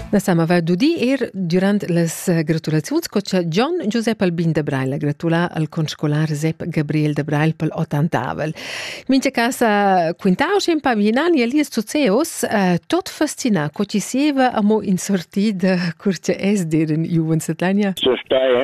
La Sam aveva d'udir er durant las gratulaziuns co cha Gian Giusep Albin de Brail ha gratulà al conscolar Zep Gabriel de Brail pel ottantavel. Mincha casa quintau schi ün pa vignani a lies suceos, eh, tot fascinà co chi sieva amo in sortida cur cha es dir in giuven setlania. So stai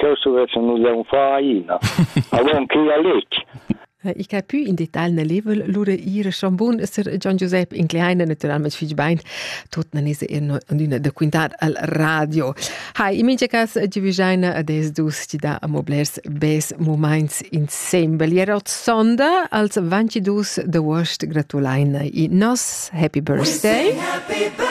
cheu stuvessan nus leun far aina. Avon che a letg. Ich ha più in detail nel level lura ir schambun ser Gian Giuseppe in kleine naturalmente fich bein tot nanese in una da quintar al radio. Hai in minge cas divigina des dus ti da moblers bes moments insemble. Jerot sonda als 22 de Wurst gratulaina i nos happy birthday. Happy birthday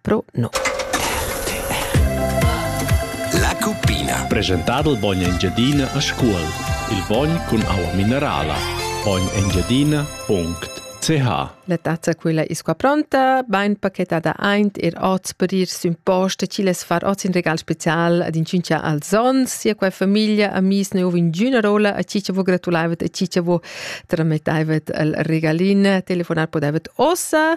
Pro no. La cuppina. Presentado il bogn Engiadina a scuol. Il bogn cun aua minerala. Bognengiadina.ch La tazza quella isqua pronta, bain pachetada aint er oz per ir sün post, chi les far oz in regal special ad in cincia al zon, sia qua famiglia amis ne ovin giuna rola a chi che vo gratulaivet a chi che vo tramettaivet al regalin, telefonar podavet ossa,